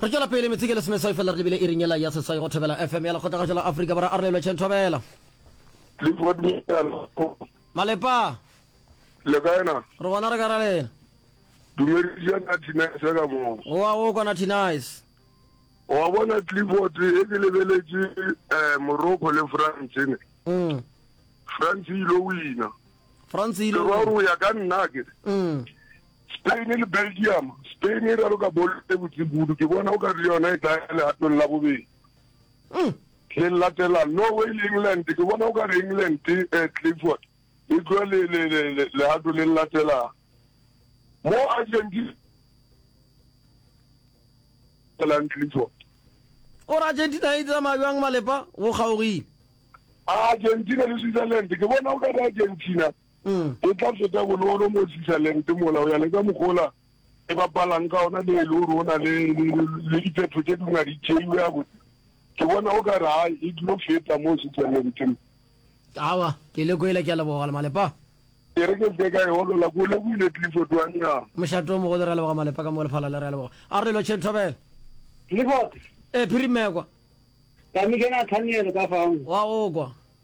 re tšwela pele metseke le semeswai fela re lebile e rinyela ya seswai go thobela fm ya lekgothagatšo la afrika bora a relelwe chen thobela malepa le kae na re gona re ka ra lena dumedisa na tinise ka moo oa o kwana tinise wa bona clifford e ke lebeletše um morocco le france ne mm. france e ile wina france e ile o ya ka nna ke mm. Spain le Belgium. Spain e raloka bolo e botse kudu, ke bona o ka re le yona e tla ya legatong la bobedi. Mm. Le latela Norway le England, ke bona o ka re England eh, Clifford e tloa le le le le legato le latelang. Mo Argentina lang Clifford. O re Argentina e tsamaya bjang malepa go kgaogile. Argentina le Switzerland, ke bona o ka re Argentina e tla feta bonolo mo Switzerland mola o ya le ka mogola e bapalang ka ona le le rona le le diphetho tse di ngadi tšeiwe ya botse ke bona o ka ra e dilo feta mo Switzerland awa ke le kwele ke a leboga le malepa ke re ke se ka e holola ko le buile tliso twanya moshato mo go le re leboga malepa ka mo le phala le re leboga a re lo chen thobela le bote e phirimekwa ka mi kena thanelo ka fao wa o kwa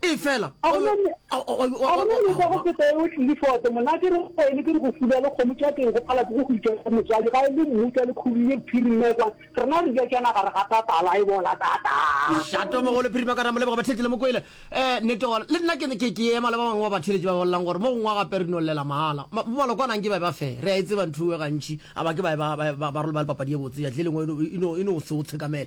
Efela, a go na le ka go feta yeo, Clifford. Monna a ke re go wene, ke re go fula le kgomo tša teng go pala ke go go itša go motswadi, ga e le mmutla le khudu ye phirimee kwa, rena re ja tšana gare ga tatala, e bola tata. Tlhato mogo le phirima ka ra mo leboga batheetši le mo kwele. Ee, nnete gona. Le nna ke, ke, ke ema le ba bangwe ba batheeletši ba bolelang gore mo gongwe wa gape re no llela mahala. Ma, malokwane anke ba e ba fe. Re a e tseba ntho eo gantši, a ba ke ba e ba, ba, ba, ba role ba le papadi ye botse, ya tlileng e no, e no, e no se o tshekamele.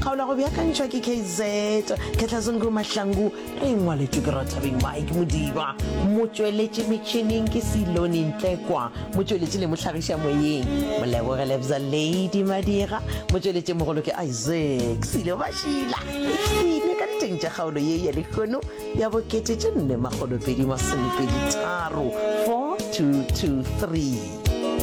Kgaolo go beakantšhwa ke KZ Khetlazungu Mahlangu, re e ngwaletšwe ke Rathabeng Mike Modiba, motšweletši metšhineng ke Silone Ntlekwa, motšweletši le mohlagiša moyeng Moleboge Lebza Lady Madira, motšweletšimogolo ke Isaac Silo Mashila. E hwile ka diteng tša kgaolo ye ya lehono ya bo kete tše nne makgolopedi masomepedi tharo, 4223.